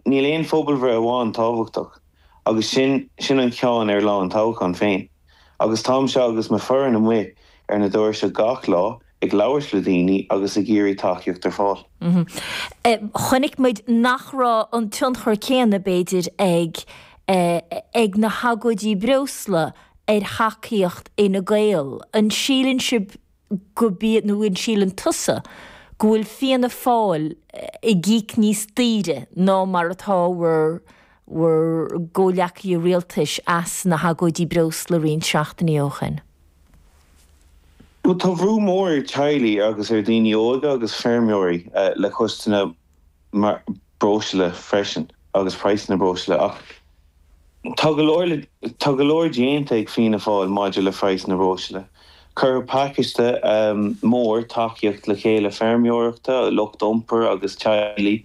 Níl aon phobalbhreith amháin tábhachtach, agus sin sin an ceann ar lá an toghcháin féin. Agus táimse agus mo foireann amuigh ar na doirse gach lá ag labhairt le daoine agus ag iarraidh tacaíocht ar fáil. Chonaic muid nach raibh an tionchar céanna, b'fhéidir, ag, ag na hagóidí breosla ar thacaíocht Fhine Gael. An síleann sibh go bí, nó an síleann tusa go bhfuil Fianna Fáil ag íoc níos daoire ná mar atá bhur, bhur gcomhleacaithe rialtais as na hagóidí breosla roinnt seachtainí ó shin? Bhuel, tá bhrú mór ar teaghlaigh agus ar dhaoine óga agus feirmeoirí le costais na. mar bhreosla freisin agus praghsanna breosla ach tá go leor, tá go leor déanta ag Fianna Fáil maidir le praghsanna breosla. Cuireadh pacáiste mór tacaíocht le chéile feirmeoireachta, lucht iompair agus teaghlaigh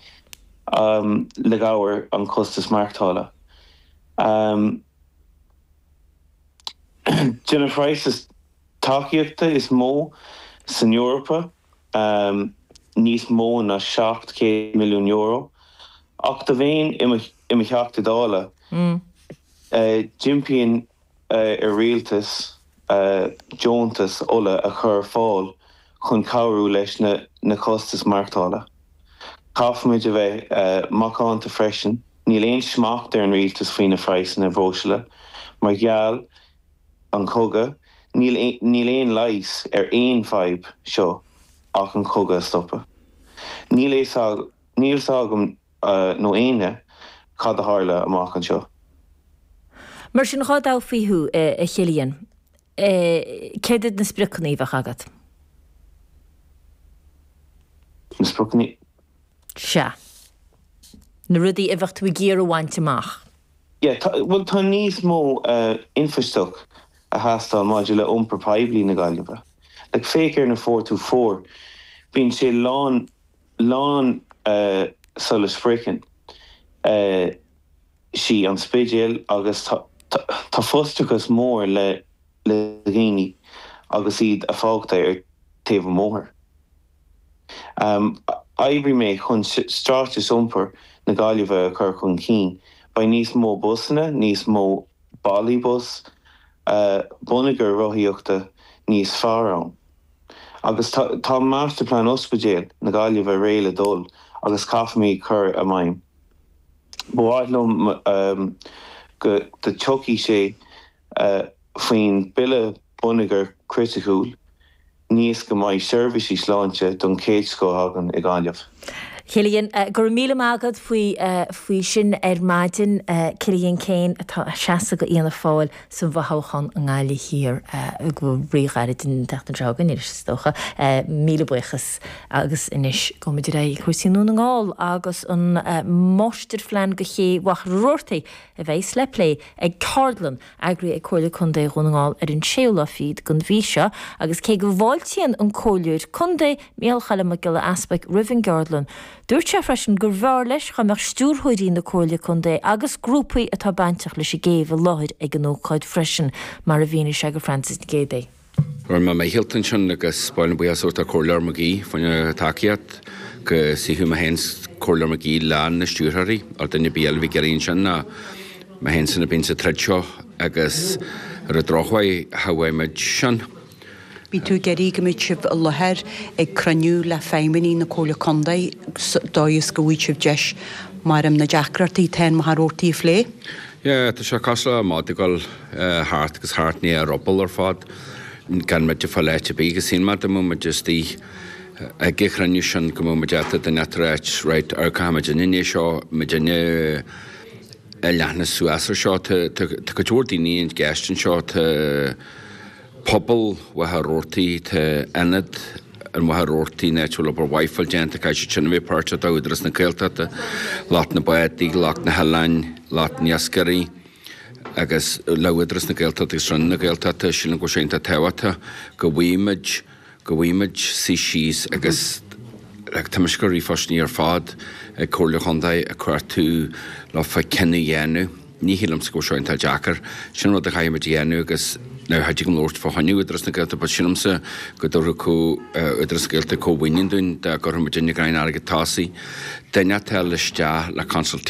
le cabhair an costas maireachtála. De na phraghas tacaíochta is mó san Eorpa. níos mó ná €700 milliún, ach dá mbeinn i mo Theachta Dála d'impeoinn ar rialtas deontas ola a chur ar fáil chun cabhrú leis na costais maireachtála. Caithfimid a bheith macánta freisin, níl aon smacht ar an rialtas faoi na phraghsanna breosla mar gheall an cogadh, níl, níl aon leigheas ar an fhadhb seo ach an cogadh a stopadh. Níl fhios, níl fhios agam nó éinne cad a tharla amach anseo. Mar sin, dhá dtoghfaí thú, a Chillian, céard iad na spriocanna a bheadh agat? Na spriocanna? Sea. Na rudaí a bheadh tú ag iarraidh a bhaint amach. Yeah, tá, bhuel, tá níos mó infheistíocht ag teastáil maidir le iompar poiblí na Gaillimhe. Like, féach ar na four two four, bíonn sé lán, lán sula sroicheann, eh, sí an Spidéal agus tá, tá, tá frustrachas mór le, le dhaoine agus iad fágtha ar taobh an bhóthair. Oibreoidh mé chun straitéis iompair na Gaillimhe a chur chun cinn. Beidh níos mó busanna, níos mó bealaí bus, bonneagar rothaíochta níos fearr ann. Agus tá Masterplan Ospidéal na Gaillimhe réidh le dul agus caithfidh mé a chur i bhfeidhm. Ba mhaith liom go dtiocfaidh sé faoin Bille Bonneagair Chriticiúil, Níos go mbeidh seirbhísí sláinte don chéad scoth againn i nGaillimh. Cillian, Go raibh míle maith agat faoi, faoi sin ar maidin. Cillian Keane atá ag seasamh go Fhianna Fáil sa bhfothoghchán i nGaillimh Thiar go bhfuil ríghairid den tseachtain seo againn anois is dócha. Míle buíochas agus anois gabhaimid ar aghaidh chuig cúrsaí i nDún na nGall agus an máistirphlean go ché Mhachaire Rabhartaigh a bheas le plé ag ceardlann eagraithe ag Comhairle Contae Dhún na nGall ar an séú lá fichead den mhí seo agus cé go bhfáiltíonn an Comhairleoir Contae, Micheál Choilm Mac Giolla Easpaig, roimh an gceardlann, dúirt sé freisin go mb'fhearr leis dá mbeadh Stiúrthóirí na Comhairle Contae agus grúpaí atá bainteach leis an gcéibh i láthair ag an ócáid freisin, mar a mhínigh sé go Frances Nic Géadaigh. Rinne mé mo shealt ansin agus ba mhaith liom buíochas a thabhairt don Chomhairleoir McGee faoina thacaíocht go suífeadh mé féin 's Comhairleoir McGee leis na stiúrthóirí or duine ar bith eile a bhí ag iarraidh ansin ná mé féin san a bhíonn sa troid seo agus ar an drochuair cha bhfaighidh muid sin. Bhí tú ag iarraidh go mbeadh sibh i láthair ag cruinniú le feidhmeannaigh na Comhairle Contae sa dóigh is go bhfaigheadh sibh deis meas'm na deacrachtaí atá i Machaire Rabhartaigh a phlé? Yeah, tá sé cosúil le madadh ag dul. thart agus thart, i ndiaidh a ruball ar fad, gan muid ag fáil áit ar bith, agus shíl mé dá mbeadh muid istigh ag an chruinniú sin go mbeadh muid ábalta díreach a ráit, right, ar caithfimid an fhine seo, muid fhine a leathnú suas ar seo, tá cuid mhór daoine i gceist anseo, tá pobal Mhachaire Rabhartaigh, tá Ionad Mhachaire Rabhartaigh a dtá obair mhaith fáil déanta, caithfidh siad sin a bheith páirteach, tá Údarás na Gaeltachta, lucht na mbádaí, lucht na n-oileán, lucht na n-iascairí. Agus le Údarás na Gaeltachta agus Roinn na Gaeltachta, sílim go bhfuil sé iontach tábhachtach go bhfuil muid, go bhfuil muid suí síos agus le toimist go ríomhphoistiní ar fad ag Comhairle Chontae a cuartú le fá choinne cinneadh a dhéanamh. Ní shílimse go bhfuil seo iontach deacair. Sin rud a chaithfimid a dhéanamh agus now cha dtig liom labhairt fá choinne Údarás na Gaeltachta but sílimse go dtabharfadh co, Údarás na Gaeltachta comh-mhaoiniú dúinn dá gcuirfimis inn i gCrainn Airgead Tosaigh duine atá le isteach le consultation,